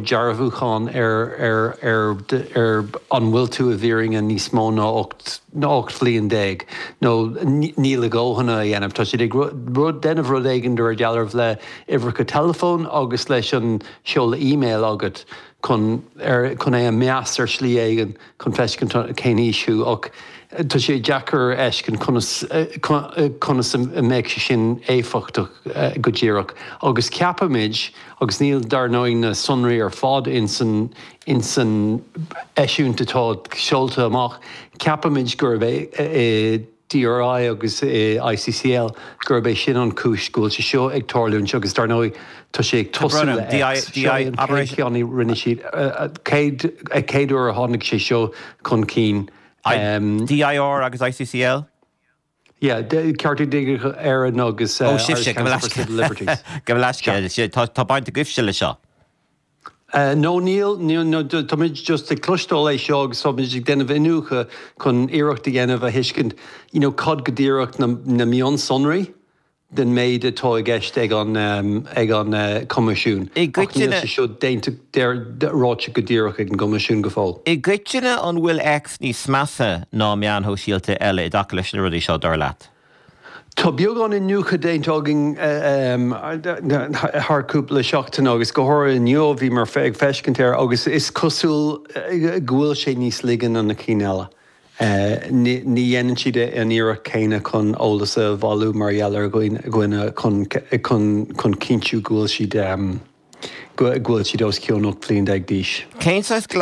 dearbhúchán ar an bhfuil tú i bhfírinne níos mó ná 18 bhliain, nó níl a ndóthain á dhéanamh. Tá siad ag déanamh rud éigin de réir dealraimh le uimhreacha teileafóin agus leis an seoladh email agat chun chun é a mheas ar shlí éigin. chun feiscint cén aois thú ach tá sé deacair a fheiscint conas a mbeadh sé sin éifeachtach go díreach agus ceapaimid, agus níl dar ndóigh na sonraí ar fad ins an eisiúint atá seolta amach, ceapaimid gurb é DRI agus ICCL, gurb é sin an cúis go bhfuil sé seo ag tarlúint agus dar ndóigh tá sé ag tosú le X. Seo é an chéad cheann a rinne siad, an chéad uair a tháinig sé seo chun cinn. DIR agus ICCL? Yeah, Cearta Digiteacha Éireann agus Irish Council for Civil Liberties. Agus tá baint agaibhse le seo. No, níl, no, táimid just ag cloisteáil faoi seo agus táimid ag déanamh iniúchadh chun iarracht a dhéanamh a thuiscint you know cad go díreach na mionsonraí den méid atá i gceist ag an ag an gCoimisiún. Ach níl sé seo déanta, ráite go díreach ag an gCoimisiún go fóill. I gcoitinne, an bhfuil X níos measa ná meáin shóisialta eile i dtaca leis na rudaí seo, dar leat? Tá beagán iniúchadh déanta againn thar cúpla seachtain agus go háirithe inniu bhí mé ag feiscint air agus is cosúil go bhfuil sé níos laige ná na cinn eile. Ní dhéanann siad an iarracht céanna chun eolas a bhailiú mar gheall ar dhuine chun chun cinntiú go bhfuil siad go bhfuil siad os cionn 18 bliain d'aois.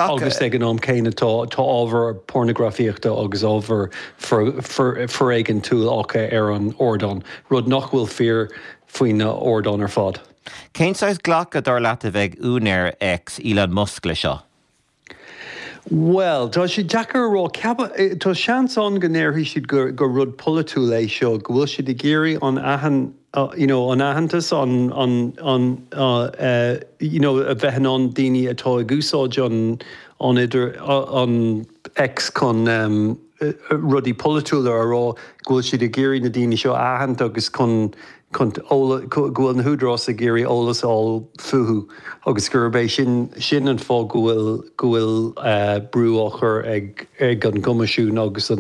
Agus ag an am céanna tá ábhar pornagrafaíochta agus ábhar foiréigintúil acu ar an ardán, rud nach bhfuil fíor faoi na hardáin ar fad. Cén saghas glacadh dar leat a bheidh ag úinéir X, Elon Musk, le seo? Bhuel, tá sé deacair a rá. Ceapaim, tá seans ann go ndéarfaidh siad gur rud polaitiúil é seo, go bhfuil siad ag iarraidh an you know an aitheantas, an an you know a bheith in ann daoine atá ag úsáid an an idir an X chun, rudaí polaitiúla a rá, go bhfuil siad ag iarraidh na daoine seo a aithint agus chun go bhfuil na húdaráis ag iarraidh eolas a fháil fúthu agus gurb é sin an fáth go bhfuil go bhfuil brú á chur ag ag an gCoimisiún agus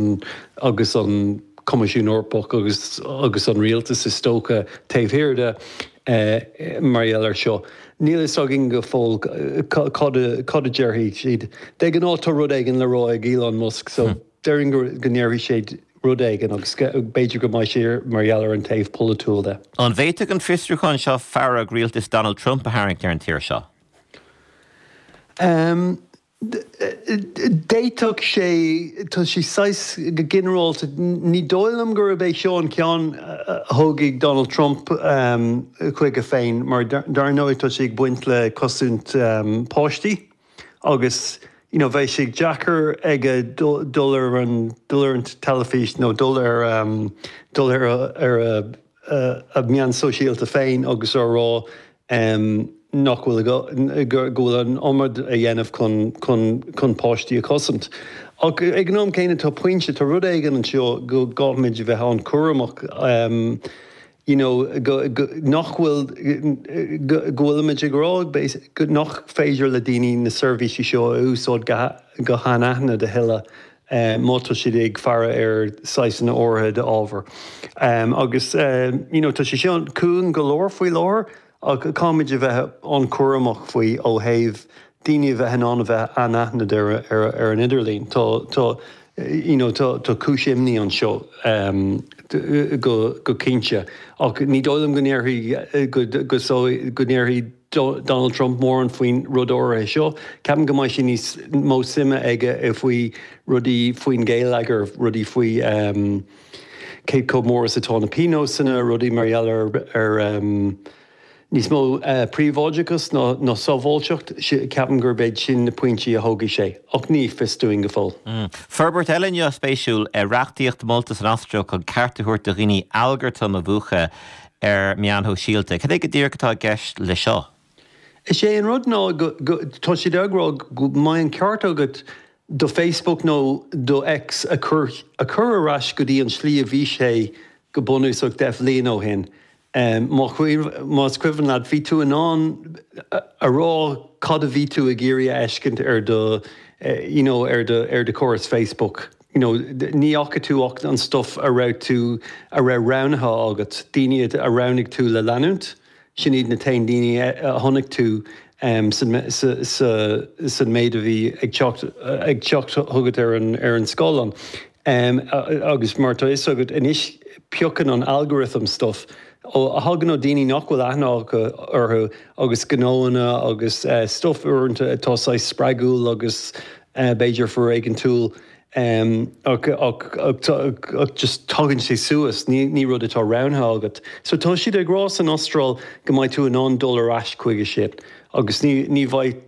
agus an Coimisiún Eorpach agus agus an Rialtas is dócha taobh thiar de. Mar gheall air seo, níl a fhios againn go fóill cad a déarfaidh siad. De ghnáth tá rud éigin le rá ag Elon Musk so déarfainn go ndéarfaidh sé rud éigin agus b'fhéidir go mbeidh sé mar gheall ar an taobh polaitiúil de. An bhféadfadh an fiosrúchán seo fearg rialtas Donald Trump a tharraingt ar an tír seo? d'fhéadfadh sé, tá sé saghas, go ginearálta, ní dóigh liom gurb é seo an ceann a thógfaidh Donald Trump chuige féin mar dar ndóigh tá sé ag baint le cosaint páistí agus you know bheadh sé deacair aige dul ar an dul ar an teilifís nó dul ar dul ar a a meán sóisialta féin agus á rá nach bhfuil, go bhfuil an iomad á dhéanamh chun páistí a chosaint. Ach ag an am céanna tá pointe, tá rud éigin anseo go gcaithfimid a bheith an-chúramach you know nach bhfuil, go bhfuilimid ag rá nach féidir le daoine na seirbhísí seo a úsáid go hanaithnid a thuilleadh. má tá siad ag faire ar shaghasanna áirithe d'ábhar. Agus you know tá sé seo cúng go leor faoi láthair ach caithfimid a bheith an-chúramach faoi ó thaobh daoine a bheith in ann a bheith anaithnid ar an idirlíon. Tá tá you know tá tá cúis imní anseo go go cinnte ach ní dóigh liom go ndéarfaidh go go go ndéarfaidh Donald Trump mórán faoin rud áirithe seo. Ceapaim go mbeidh sé níos mó suime aige i faoi rudaí faoin ghéilleagar, rudaí faoi cé chomh mór is atá na pionóis­anna, rudaí mar gheall ar níos mó príobháideachas ná sábháilteacht. Ceapaim gurb iad sin na pointí a thógfaidh sé, ach ní fios dúinn go fóill. Forbairt eile inniu spéisiúil, reachtaíocht molta san Astráil chun ceart a thabhairt do dhaoine algartaim a mhúchadh. ar meáin shóisialta. Cad é go díreach atá i gceist le seo? Is é an rud ná go, go, tá siad ag rá go mbeidh an ceart agat do Facebook nó do X a chur, a chur ar ais go dtí an tslí a bhí sé go bunúsach deich bhliain ó shin. Má chuir, más cuimhin leat, bhí tú in ann a rá cad a bhí tú ag iarraidh a fheiscint ar do, you know, ar do, ar do chóras Facebook. you know ní fhaca tú ach an stuff a raibh tú, a raibh roghnaithe agat, daoine a roghnaigh tú le leanúint, sin iad na t-aon daoine a chonaic tú san méid a bhí ag teacht, ag teacht chugat ar an, ar an scáileán agus mar tá a fhios agat anois piocann an algorithm stuff a thagann ó daoine nach bhfuil aithne acu orthu agus gnóanna agus stuff uaireanta atá saghas spreagúil agus. b'fhéidir foréigeantúil ach just tagann sé suas, ní rud atá roghnaithe agat. So tá siad ag rá san Astráil go mbeidh tú in ann dul ar ais chuige sin agus ní bheidh,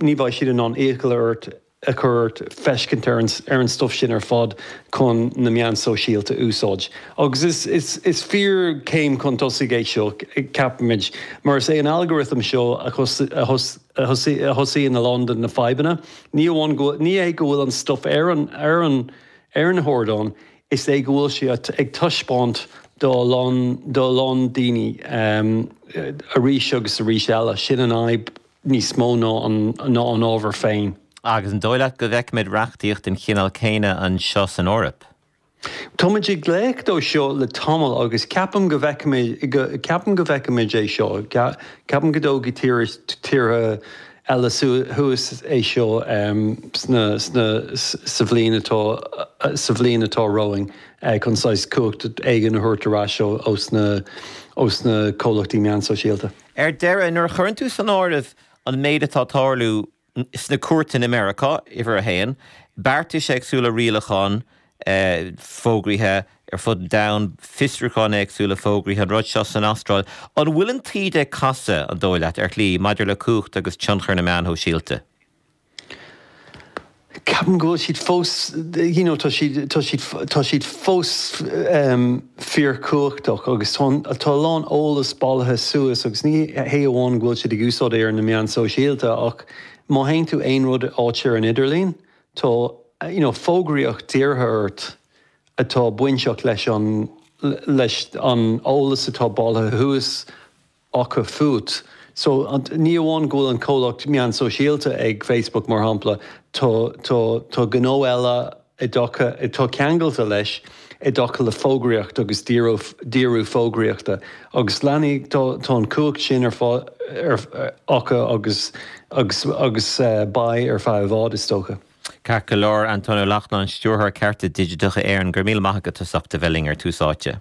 ní bheidh siad in ann iachall ort a chur ort feiscint ar an, ar an stuff sin ar fad chun na meáin sóisialta úsáid. Agus is, is, is fíor céim chun tosaigh é seo ceapaimid mar is é an algorithm seo a thus, a thus, a thosaíonn a lán de na fadhbanna. Ní amháin go, ní é go bhfuil an stuif ar an, ar an, ar an ardán, is é go bhfuil sé ag taispeáint do a lán, do a lán daoine arís agus arís eile, sin an fhadhb níos mó ná an, ná an ábhar féin. Agus an dóigh leat go bhfeicfimid reachtaíocht den chineál céanna anseo san Eoraip? Táimid ag glaoch dó seo le tamall agus ceapaim go bhfeicfimid, ceapaim go bhfeicfimid é seo, ceapaim go dtógfaidh tíortha eile suas é seo sna, sna, sa bhliain atá, sa bhliain atá romhainn chun saghas cumhacht éigin a thabhairt ar ais ós na, ós na comhlachtaí meán sóisialta. Ar deireadh, nuair a chuireann tú san áireamh an méid atá ag tarlú sna cúirteanna i Meiriceá, Uimhir 1, beartais éagsúla rialacháin fógraithe ar fud an domhain, fiosrúcháin éagsúla fógraithe, an rud seo san Astráil. An bhfuil an taoide ag casadh, an dóigh leat, ar shlí maidir le cumhacht agus tionchar na meán shóisialta? Ceapaim go bhfuil siad fós, you know, tá siad, tá siad, tá siad fós, fíorchumhachtach agus tá a lán eolas bailithe suas agus ní hé amháin go bhfuil siad ag úsáid é ar na meáin sóisialta ach má théann tú aon rud áit ar an idirlíon tá you know fógraíocht dírithe ort atá bainteach leis an leis an eolas atá bailithe suas acu fút. So, ní amháin go bhfuil an comhlacht meán sóisialta ag Facebook mar shampla, tá gnó eile i dtaca, tá ceangailte leis i dtaca le fógraíocht agus díriú fógraíochta agus leanfaidh, tá an cumhacht sin ar acu agus agus beidh ar feadh i bhfad is dócha. Ceart go leor, Antaine Ó Lachtnáin, Stiúrthóir Cearta Digiteacha Éireann, go raibh míle maith agat as ucht a bheith linn ar Tús Áite.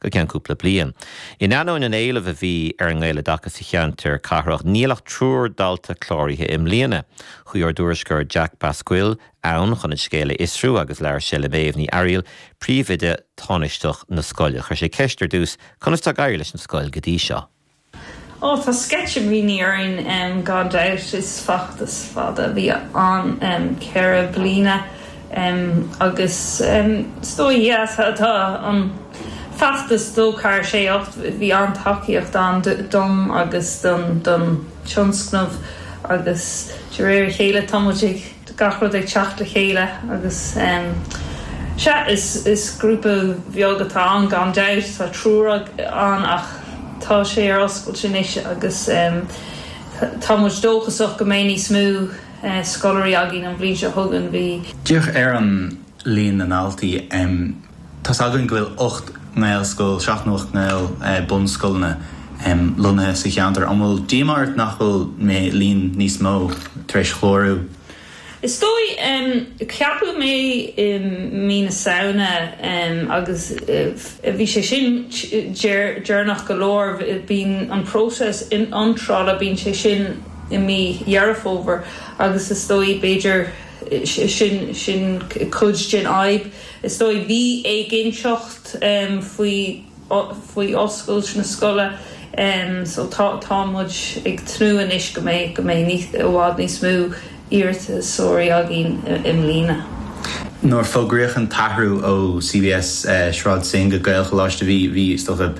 go ceann cúpla bliain. In ainneoin an éilimh a bhí ar an nGaeloideachas sa cheantar cathrach, níl ach triúr dalta cláraithe i mbliana. Chuaigh ár dtuairisceoir Jack Basquill ann chun an scéal a fhiosrú agus labhair sé le Méabh Ní Fhearghail, príomhoide tánaisteach na scoile. Chuir sé ceist ar dtús, Conas tá ag éirí leis an scoil go dtí seo? Ó, tá sceitimíní orainn gan dabht. Is feachtas fada a bhí ann, ceithre bliana, agus is dóigh deas atá an feachtas dó ceathair sé ocht. Bhí an-tacaíocht ann dom agus don tionscnamh agus de réir a chéile tá muid ag. gach rud ag teacht le chéile agus sea, is grúpa beag atá ann gan dabht, tá triúr ann ach tá sé ar oscailt anois agus tá muid dóchasach go mbeidh níos mó scoláirí againn an bhliain seo chugainn. Bhí. Díreach ar líon na ndaltaí. Tá's againn go bhfuil ocht nGaelscoil, seacht nó ocht nGaelbhunscoileanna, lonnaithe sa cheantar. An bhfuil díomá ort nach bhfuil an líon níos mó tar éis clárú? Is dóigh. Ceapadh mé i mí na Samhna agus bhí sé sin deireanach go leor. Bíonn an próiseas iontrála, bíonn sé sin i mí Dheireadh Fómhair agus is dóigh, b'fhéidir, sin cuid den fhadhb. Is dóigh bhí éiginnteacht faoi oscailt na scoile so tá muid ag tnúth anois go mbeidh, go mbeidh i bhfad níos mó iarratasóirí againn i mbliana. Nuair a fógraíodh an t-athrú ó CBS Sráid Synge go Gaelcholáiste bhí is dócha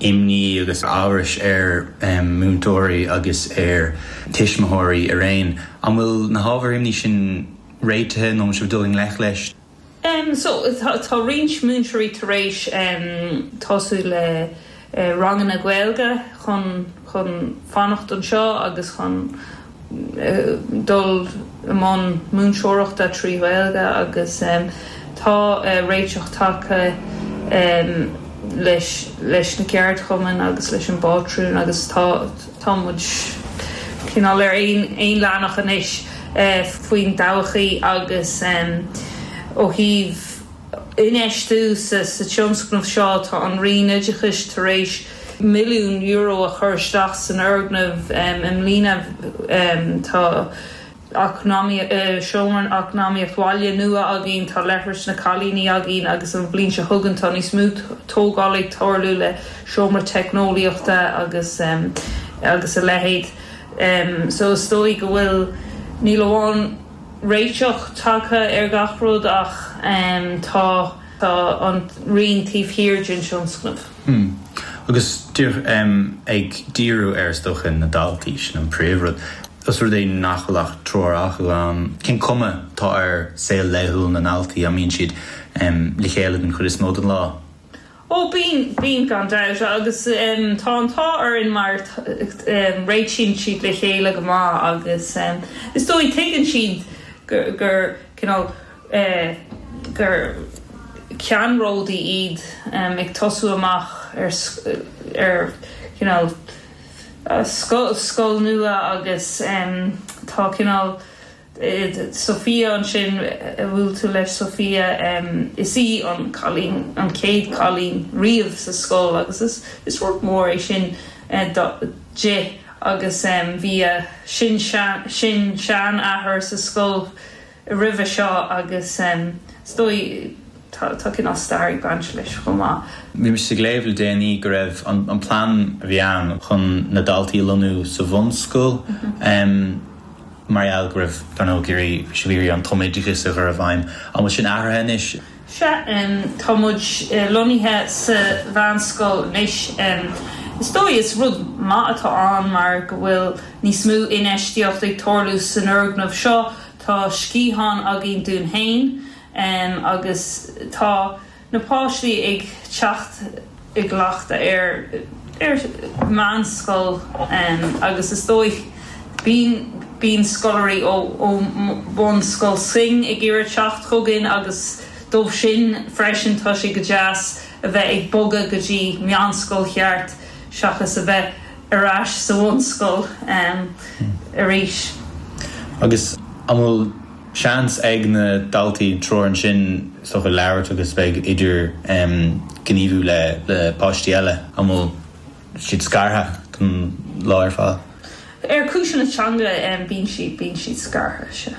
imní agus amhras ar mhúinteoirí agus ar thuismitheoirí araon. An bhfuil na hábhair imní sin réitithe nó an bhfuil sibh ag dul i ngleic leis? Em so tá roinnt múinteoirí tar éis em tosú le ranganna Gaeilge chun, chun fanacht anseo agus chun eh dul i mbun múinteoireachta trí Ghaeilge agus em tá eh réiteach tagtha em leis, leis na ceardchumainn agus leis an bpátrún agus tá, Tá muid cineál ar aon leathanach anois faoin dtodhchaí agus ó thaobh infheistiú sa tionscnamh seo tá an Roinn Oideachais tar éis milliún euro a chur isteach san fhoirgneamh i mbliana. Tá. eacnamaíocht, seomra eacnamaíocht bhaile nua againn, tá leithris na cailíní againn agus an bhliain seo chugainn tá níos mó tógáil ag tarlú le seomra teicneolaíochta agus agus a leithéid. So is dóigh go bhfuil, ní hamháin réiteach tagtha ar gach rud ach tá tá an Roinn taobh thiar den tionscnamh. Hmm. Agus díreach ag díriú ar is dócha na daltaí, sin an príomhrud. Ós rud é nach bhfuil ach triúr acu ann, cén cuma atá ar shaol laethúil na ndaltaí? An mbíonn siad le chéile den chuid is mó den lá? Ó, bíonn, bíonn gan dabht agus tá an t-ádh orainn mar réitíonn siad le chéile go maith agus is dóigh tuigeann siad gur cineál, gur ceannródaithe iad ag tosú amach ar, ar, cineál, scoil nua agus tá cineál Sophia ansin a bhuail tú leis Sophia is í an cailín an chéad cailín riamh sa scoil agus is rud mór é sin di agus bhí a sin-seanathair sa scoil roimhe seo agus is dóigh tá cineál stair ag baint leis chomh maith. Bhí mise ag léamh le déanaí go raibh an plean a bhí ann chun na daltaí a lonnú sa bhunscoil mar gheall go raibh, dar ndóigh, bhí sibh ag iarraidh an tumoideachas a chur i bhfeidhm. An bhfuil sin athraithe anois? Sea, tá muid lonnaithe sa Mheánscoil anois. Is dóigh is rud maith atá ann mar go bhfuil níos mó infheistíocht ag tarlú san fhoirgneamh seo. Tá sciathán againn dúinn féin agus tá na páistí ag teacht. i gcleachtadh ar ar mheánscoil agus is dóigh bíonn bíonn scoláirí ó ó Bhunscoil Synge ag iarraidh teacht chugainn agus dóibh sin freisin tá sé go deas a bheith ag bogadh go dtí meánscoil cheart seachas a bheith ar ais sa bhunscoil arís. Agus an bhfuil seans ag na daltaí i dtreo ansin, so, a bheith ag labhairt agus a bheith ag idirghníomhú le páistí eile nó an bhfuil siad scartha don lá ar fad. Ar chúiseanna teanga bíonn siad bíonn siad scartha seo.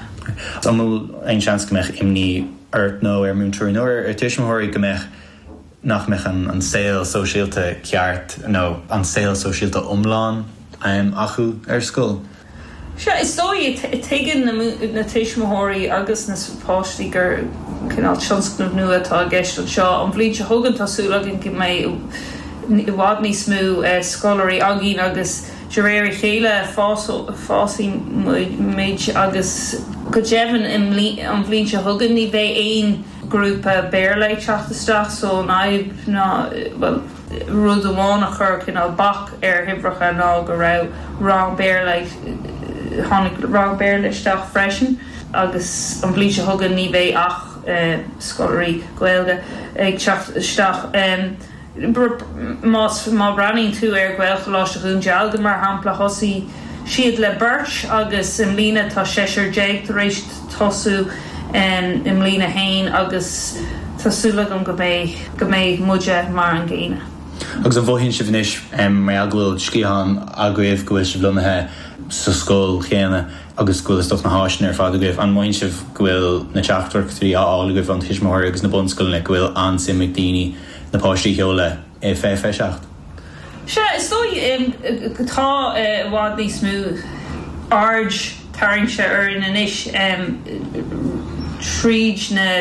An bhfuil aon seans go mbeadh imní ort nó ar múinteoirí nó ar tuismitheoirí go mbeadh. nach mbeadh an saol sóisialta ceart nó an saol sóisialta iomlán acu ar scoil. Sea, is dóigh, tuigeann na tuismitheoirí agus na páistí gur cineál tionscnamh nua atá i gceist anseo. An bhliain seo chugainn, tá súil againn go mbeidh i bhfad níos mó scoláirí againn agus de réir a chéile fásfaidh muid agus go deimhin an bhliain seo chugainn ní bheidh aon grúpa Béarla ag teacht isteach so an fhadhb ná, bhuel, rud amháin a chuir cineál bac ar na huimhreacha ná go raibh rang Béarla ag, tháinig rang Béarla isteach freisin agus an bhliain seo chugainn ní bheidh ach scoláirí Gaeilge ag teacht isteach. Má bhreathnaíonn tú ar Ghaelcholáiste Dhún Dealgan mar shampla, thosaigh siad le beirt agus i mbliana tá seisear déag tar éis tosú, i mbliana féin, agus tá súil agam go mbeidh muide mar an gcéanna. Agus an mothaíonn sibh anois mar gheall go bhfuil sciathán agaibh, go bhfuil sibh lonnaithe sa scoil chéanna agus go bhfuil is dócha na háiseanna ar fad agaibh, an mothaíonn sibh go bhfuil na teachtaireachtaí á fháil agaibh ó na tuismitheoirí agus na bunscoileanna go bhfuil an-suim ag daoine na páistí a sheol i bhfiche seacht. Sea, is dóigh im go bhfuil i bhfad níos mó aird tarraingte orainn anois tríd na.